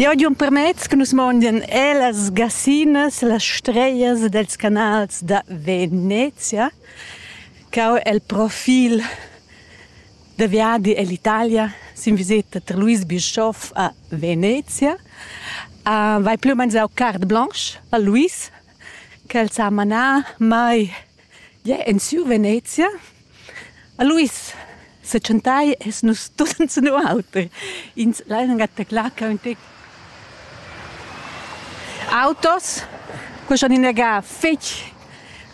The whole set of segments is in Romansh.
Jau giun permez che nus mondian er las gassinas, las strejas dels canals da Venezia, ch'eu e'l profil da viadi ell'Italia sin viseta tar Luis Bischoff a Venezia. Vai plü u mez eau carte blanche a Luis, ch'el s'ha manà mai, ie, in sur Venezia. Aluis setschentai es nus tut enzun auter. Ins lain gataclar ca ün tec. Autos, que schon inagà fetg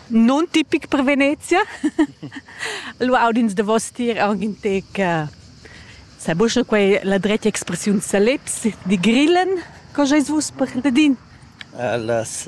non tipic per Venezia. Allura aud'ins davos tier aunc in tec sai buca quei la dretga expressiun saleps, di grillen, co schais vus per ladin? Las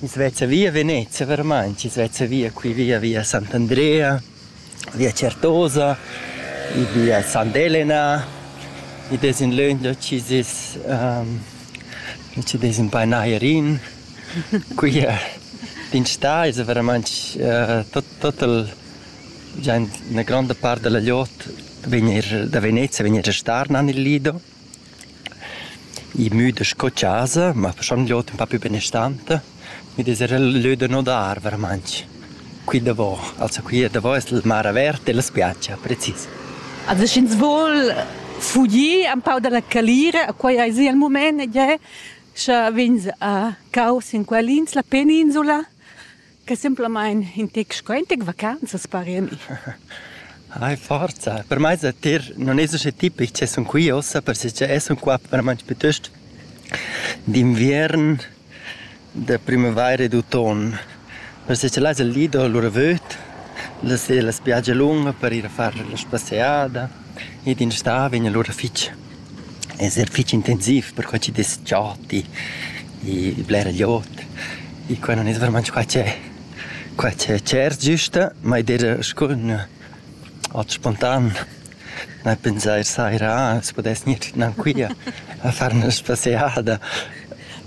Ins vezza via Venezia vermaint, ins vezza via qui via via Sant'Andrea, via Certosa, i via Sant'Elena, id es ün löin da chi s'es da chi dess ün pa nair in. Qui d'in stà esa veramaint tot tot il già üna gronda part da la liot vegn eir da Venezia vegn eir a star nan il Lido. I müda sco chasa, ma faschond l'ot ün pa pü benestanta, mi dess eir lö da nodar veramaint qui davò. Also qui davò es la mar averta e la spiatscha, precis. Also sch'ins voul fugir un pau da la calira, quai aisi il mumaint ed è scha vegns a caus in quell'ins, la peninsula, che simplamain in tec sco in tec vacanzas pari a mi. Ai forza, per mai sa tir non es usche tipic che sun qui ossa, perche es un qua veramente piuttosto d'inviern, de primavaira e d'automne. Perche là es il Lido, l'ura vöd, la spiaggia lunga per ir a far la spasseada. Ed in stà vegn alura fich esa fich intensiv perquai chi dess chati e bler glieud e quai nun es vairamaing qua che qua che tschert güsta, ma id eira scu ün ot spontan da pensair saira ah as pudess gnir gnancuia a far 'na spasseada.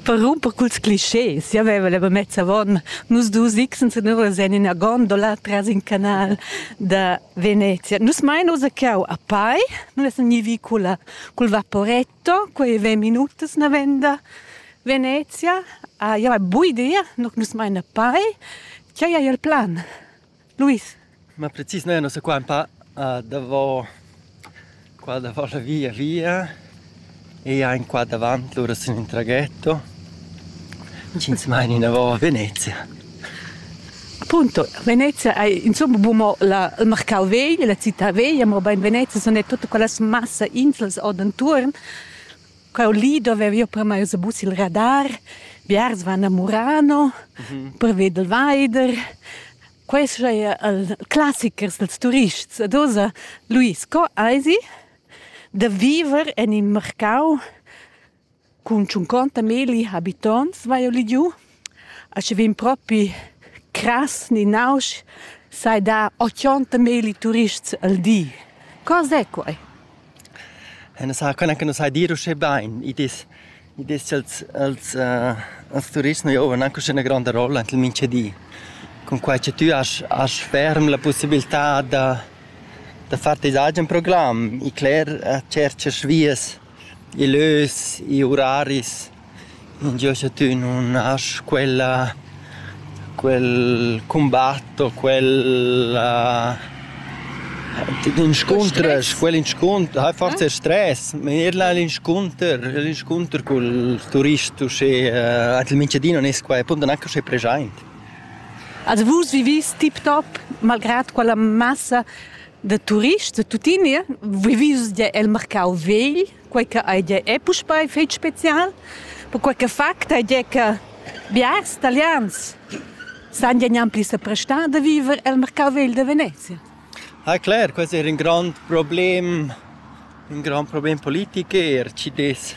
Per rumper culs clischés giavaiva la mamezza avon nus dus x senura sen ina gondola tras in canal da Venezia. Nus mein ussa cau a Pai, nus essan gnivi culla, cul vaporetto, quei ventg minutas navenda Venezia. Ah, ja, bu idea, no nus mein a Pai. Tgei ei il plan? Luis? Ma precis, noi annos qua un pa uh, davo Qua davant la via via e ein qua davant lura sin in traghetto. Ins meina inavò a Venezia. Appunto, Venezia ei insomma bu mo la, il marcau vegl, la città veglia, mobein Venezia sun ei tutta quellas massa inslas ord entuorn. Quel li dovev jeu per mei ussa bus il radar. Biars van a Murano per veder il veider. Quei sch'ei el classichers dals turists ad oza Luis, co eisi da viver en in marcau cun tschunconta milli habitonts, vai jeu ligiu? A sche vegn propi crass ni nausch, sai dar ochonta milli turists al di. Co sei quei? Nus ha cun nus hai dir uschè bain. Id es id es cha'ls als als turists nu giovan anche üna gronda rolla ant il mincha di. Cunquai cha tü hast hast ferm la pussibiltà da da far teis agen program. I cler tscherchas vias, i lös, i uraris. Jeu sche tü nun hast quella quel cumbat o quella inscuntresch quel inscunter hai forsa stress ma ir là l'inscunter l'inscunter cul turist uschè il Mintgadin non es qua e appunto neanche uschè preschaint. Also vus vivis tiptop malgrad quella massa da turists da tuttina vivis el marcau vegl? quei che ei gie è puspei fetg spezial, perquei che fact ei gie che biars italians san gie gnanpli seprestar da viver el mercau vegl de Venezia. Ah clar, questo era un grande problem, un grand problem politico, er ci des,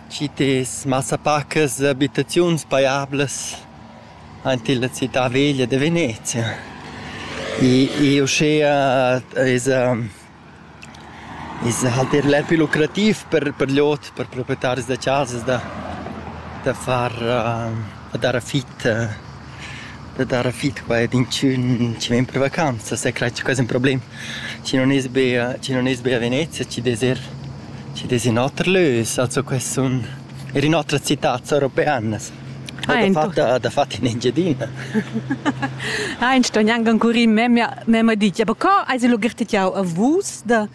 ci des massapacas abitaziuns paiablas ante la città veglia de Venezia. E, e uschea es, um, Ins ha halt eir l'effet lucrativ per per gl'ot, per proprietaris da chasas da da far da dar affit da dar affit qua ed inchün chi ven per vacanzas, e crai che quai es ün problem. Chi non es be chi non es be a Venezia, chi dess eir chi dess in oter lös, also quai sun eir in otras citats europeanas. dafatta dafatta in Engiadina. Ha in sto gnanc ancora memia memma dit, ja aber co hai sie lugirtet jau a vus da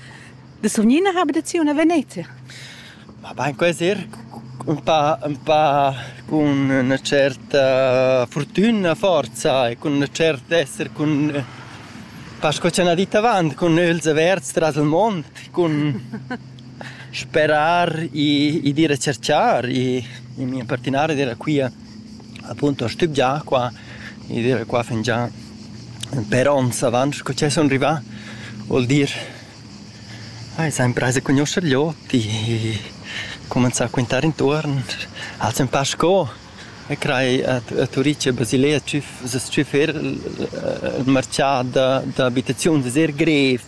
da sovnina habitaziun a Venezia? Ma bain quasi er un pa un pa con una certa fortuna forza e con una certa essere con pas co c'è una ditta avanti con els averts tras il mond con Sperar i ed ir a cerchar i in mia partenara d'ira quia appunto a stübgiar qua i d'ira qua fingià per ons avant sco cha sun rivà. Vuol dir ai s'ha imprais a cugnuoscher gli ot e cumanzà a quintare intuorn, ha'ls ün pa sco e crai a Turic e Basilea s-chüf s-chüfer marchà d'abitaziuns es eir grev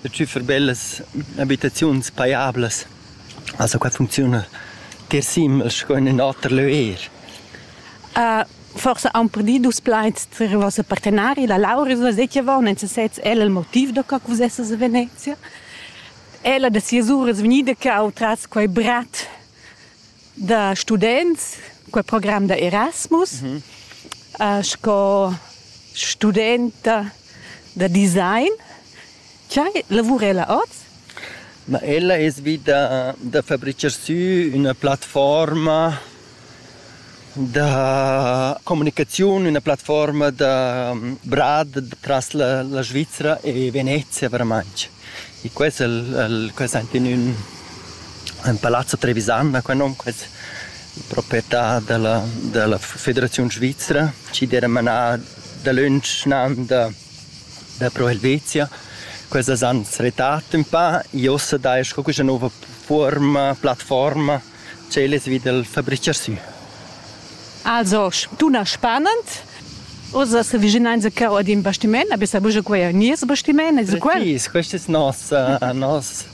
da tschüffer bellas abitaziuns pajablas. Also qua funcziuna tier simel sco in ün oter lö eir. forsa aun per dir dus plaids tar il voss partenari, la Lauris Vasetieva, non se sez ella il motiv da co vus essas a Venezia. Ella da sias uras vgnida che au tras quei brat da students, quel program da Erasmus, mm -hmm. uh, sco studenta da design. Chai lavura ella oz? Ma ella es vita da fabricar sü una plattforma da comunicaziun, una plattforma da brad tras la, la Svizzera e Venezia veramente. Quels el el quels ein in ün ün palazzo trevisan ha quei nom, quels proprietà dalla dalla Federaziun svizra, chi d'eira manà dalöntsch nan da da Pro Helvetia. Quels as han retrat ün pa, i ossa dai sco quaista nouva fuorma, plattforma tschel es vi dal fabricher sü. Also, dunna spanend, Oz as avvicinains a cheu ad ün bastimaint, na bessa buca quei ein nies bastimaint, es quel? Precis, quest es nos, uh, nos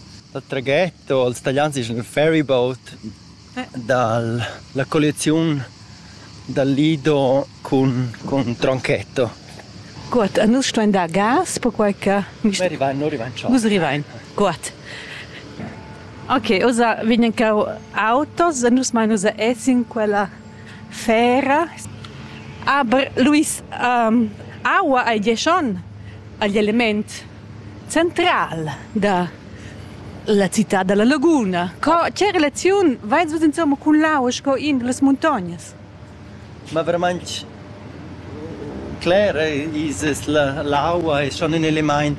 traghetto, els talians dischan ferry boat, dal la colliaziun dal Lido cun, cun tronchetto. Guot, e nus stuein dar gas, perquai che... Arrivain, arrivain, ciao. Vus arrivain, guot. Ok, osa vegnan cau autos e nus mai nus essin quella fera. Aber Luis, um, aua ei dieschon agl element Central da la citad da la laguna. Co che relaziun vais vus insomma cun l'aua sco in da las muntognas? Ma verament cler es la, l'aua è schon ün elimaint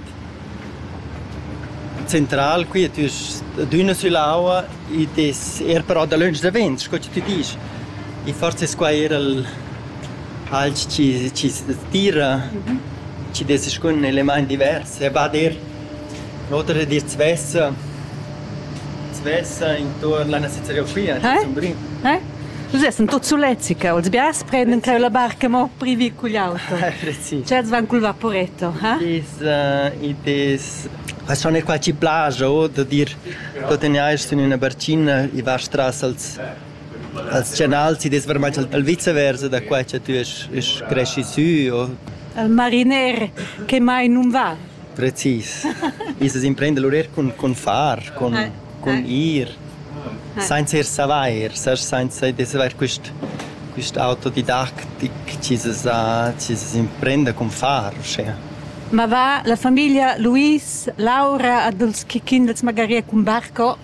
central qui tü d'üna süll'aua id es eir però dalöntsch da vent, sco chi tü disch. E forse es quai eir il Fals chi chi s'tira, chi dess scun elemaint divers e va dir. L'oter di d'svessa, s'vessa intuorn la nossa zereofia, sun brin. Nus essan tuot sulets qua, ils biars prendan creu la barca mo per vir cugl auto. Sì. Tschels van cul vaporetto, ha? I's it es persun e qua chi plaja o da dir, tuot e niair sün üna barcina, i vast tras als Als chanals ti dess varmai saltar viceversa da quai cha tü esch esch creschi sü o? Il mariner che mai nun va. Precis. Ins as imprenda lur eir cun, cun far, cun, cun ir, sainza ir savair, sast, sainza d'avair quist quist autodidactic chi s'as ha chi s'as imprenda cun far uschea. Ma va la famiglia Luis, Laura, Adolf Chichin, els magari cun barco?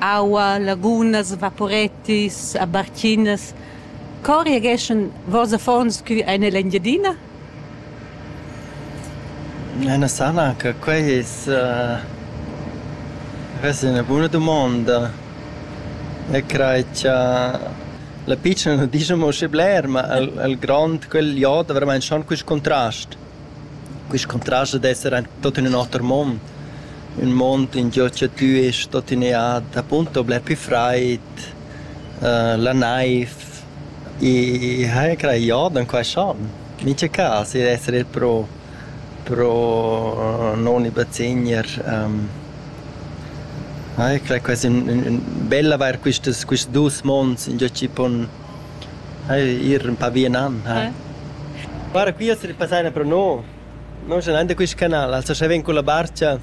aua, lagunas, vaporettis, barchinas. Co reageschan vos affons cu ein ell'Engiadina? Ena sana che quei es uh, res ina buna dumonda. E crei cha la pitschna nu discha mo sche bler, ma il il grond, quel jod, ha veramaint schon quist contrast. Quist contrast dad esser aint tuot in ün oter mond, ün mond ingio cha tü est tuttenea appunto bler pü fraid, la naiv, e hai craia or da quai schon. Mincha cas il esser il pro pro non i bazegner hai crai quai es ün ün bel avair quistas quist duos monds ingio chi pon Ir ün pa via nan, ha. Guarda qui as passà üna pro no. No scha nan da quist canal, also scha ven culla barcha,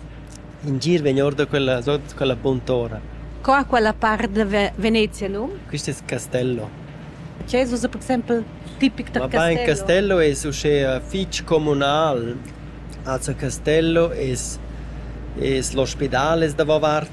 in gir vegn or da quella, sot quella buntora. Co ha quella part da Venezia num? Quist es Castello. Che es usa per exempel tipic da Castello? Ma pa in Castello es uschè fich comunal. Also Castello es es l'ospidal es davo vart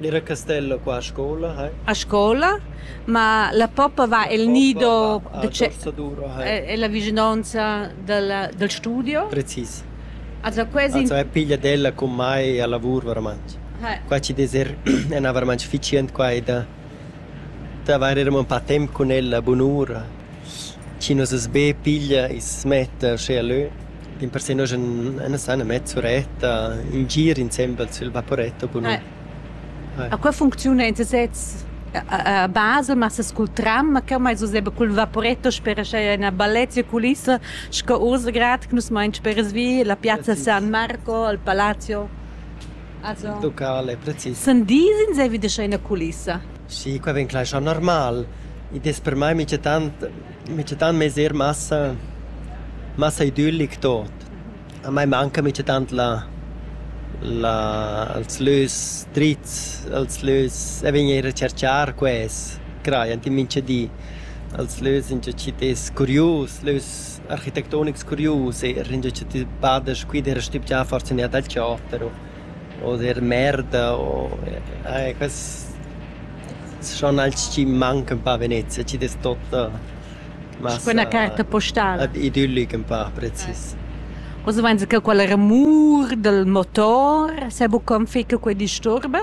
Era Castella qua a scola hai? A scola? Ma la poppa va el nido da Cessadura hai. Ella vischinonza dalla dal studio. Precis. Also quasi Also è piglia d'ella cun mai a lavur varamantg. Qua ci des er ena varamantg ficient qua e da da avair er amo ün pa temp cun ella bunura. Chi nos as be piglia e s'metta uschè a lö. In persun uschè ena sana mezz'uretta, in gir insembel sül vaporetto bunun. A qua funcziuna in sesez a basa, ma se cul tram, ch'eu m'hais useda cul vaporetto sper uschè üna bellezia culissa sco Usegrad, che nus main spers vi, la piazza San Marco, il palazzo. Also. Locale, precis. Sun disins e vi da üna culissa? Sì, qua vegn clar schon normal. Id es per mai minchatant Mittatant m'ais eir massa massa idüllic tuot. A mai manca mittatant la la els lös drits, els lös e vegn eir a cerchar quels, crajan tin mincha di. Els lös ingio chi t'es curius, lös architettonics curius eir, ingio cha ti bada scu id era stübgià forsa üna dal chater o o der merda o eh quels schon als chi mancan un pa a Venezia, chi dess totta massa... Sco üna carta postala. Idyllic ün pa precis. Oz vainsa que quella remur dal motor, s'ha buca ün fe che que disturba?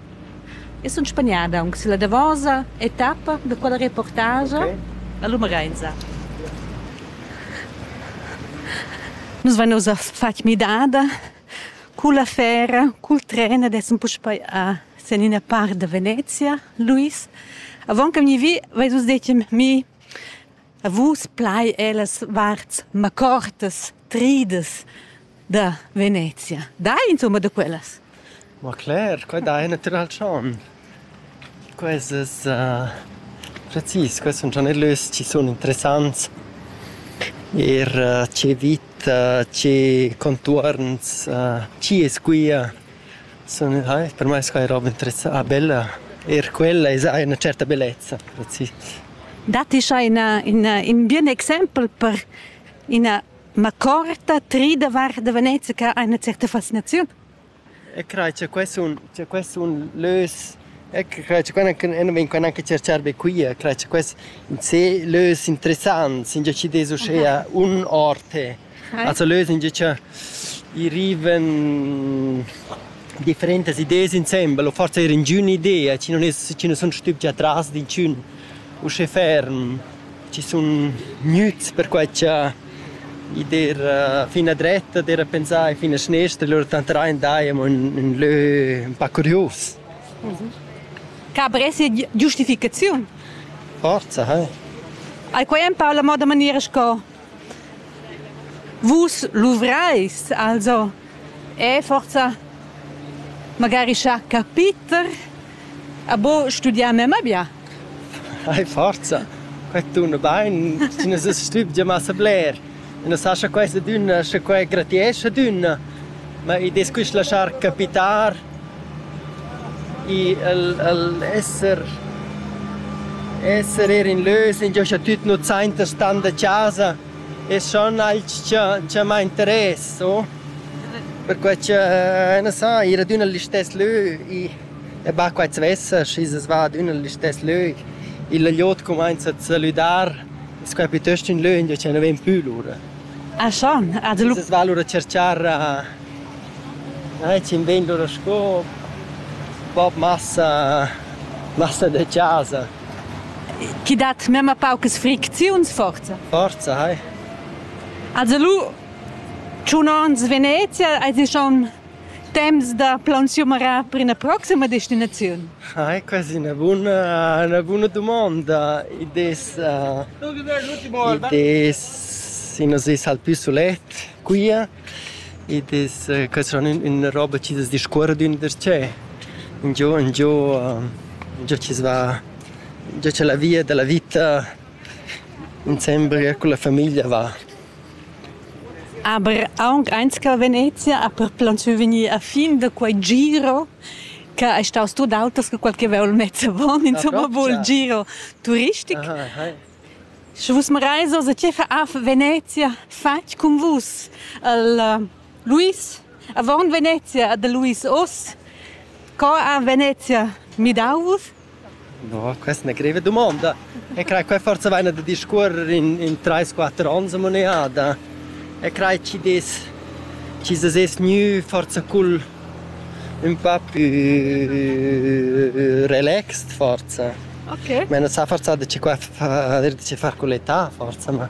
Eu sun spagnada aunc sülla davosa etappa da quella reportagia. Okay. La lumerainsa. Nus vain ussa fat midada culla fera, cul tren ed essan puspei a sen ina part da Venezia, Luis. Avon che vegni vi, veis vus detg mi A vus plai ellas varts macortas, tridas da Venezia. Dai insomma da quellas. Ma Claire, quai dai natural chan. Quesas uh, precis, quels sun schon erlös, ci sun interessants. Er uh, ce vita, ce contuorns, uh, ci es quia. Sun hai per mai sco ei roba interessa ah bella. Eir quella esa ha üna certa bellezza, sì. Datti scha ina in in bien exempel per ina macorta tri davart da Venezia che ha üna certa fascinaziun? E crai cha quai sun cha quai sun lös e crai cha quai vegn quai anche cerchar be quia. Crai cha quai in se lös interessants, ingià chi'd es uschea un orte. Also lösen gia cha i rivan differentas ideas insembel o forsa eir ingün idea chi non es chi nu sun stübgi atras d'inchün uschè ferm, chi sun gnüts perquai cha i d'eira fin a dretta d'eira pensà e fin a schnestra e lur tanteraint daja amo ün ün lö ün pa curius. Ca bress sia giustificaziun? Forza, eh! Al quai am parla mo da maniera sco Vus luvreis also e forsa magari schar capiter a bo studiar memma bia? Ai forza, quei tuna bein, ti ne sas stübgia massa bler. E ne sa scha questa dunna, scha quei gratiescha dunna. Ma id es quist laschar capitar i el el esser esser eir in lös ingiò cha tüt nu sainta stan da chasa es schon alch cha cha m'ha interess o perquai cha na sa ir ad ün listess lö i e ba quai svessa schi's es va ad ün listess lö illa glot cumainza a salüdar es quai piuttost ün lö ingiò cha nu ven pü lura Ah schon, ad lu. Es val ora cercar eh cin vegn lura sco bob massa massa de casa. Chi dat memma paucas fricziuns forza? Forza, hai. Also lu, tschun ons Venezia, eis ti schon Temps da plaunsiumarar per ina proxima destinaziun? Ah, è quasi una buona, una buona domanda. I des, uh, i des si nos es al più sulet qui ed es uh, que son una roba chi das discuor d'ün darcheu. Un giò, un giò, uh, giò ci va, giò c'è la via della vita insembra con la famiglia va. Aber aunc eins che Venezia ha perplantschiu vegnir a fin da quei giro che ei staus tut auters che quel che vegl mezza von, insomma, vul giro turistic. Sche vus mareis oz a tgei fa Venezia fatg cun vus? El Luis, avon Venezia, de Luis oz, co ha Venezia midau vus? No, questa è una greve domanda. E crai, qua forse vaina da discorrer in, in 3-4 ans a moneda. E crai, ci des, ci se ses gnü forse cul un po' più relaxed forse. Ok. Ma non sa forse da ci qua far, da ci far con l'età forse, ma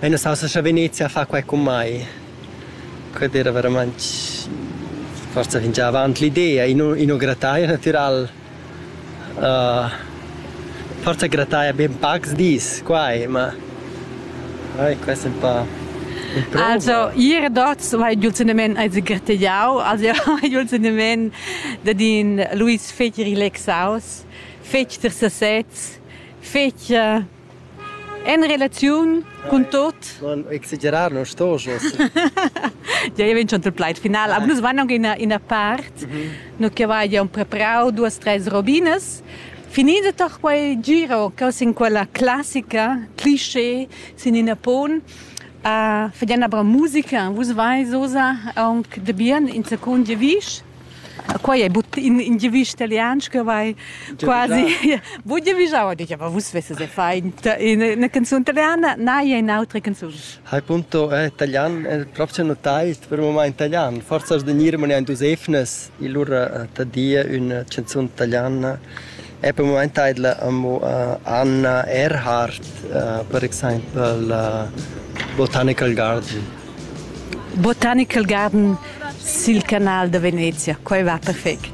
Ei nuss'aussa scha Venezia fa quei cun mei. Quella era veramein forsa fingià avant l'idea, ino grattaia natiral. Forsa grattaia be ün pacs dis quai, ma oi quest ün pa Also ir dats vai giul senimaint ais grattaiau, also hai giul senimaint dad in Luis fetg relaxaus, fetg tersasets, fetg En relaziun cun tot. Non exagerar, non sto jos. Ja, io vincio il plaid final. Aber nus vanno in in part, no che va ja un preparau duas tres robinas. Finito toch quel giro che sin quella classica cliché sin in pon a fedena bra musica vus vai sosa aunc de bien in seconde visch Quai è but in, in giavisch italian che vai quasi... Voi giavischava, dice, ma vus vesses faint una canzone italiana, na, è un'altra canzone. Hai punto eh, italian, è proprio notaist per il moment italian. Forse as de nirmane ein dus efnes, il lur eh, tadia una canzone italiana E per mumaint taidla amo Anna Erhardt, per exaimpel Botanical Garden. Botanical Garden sil canal da Venezia, quai va perfect.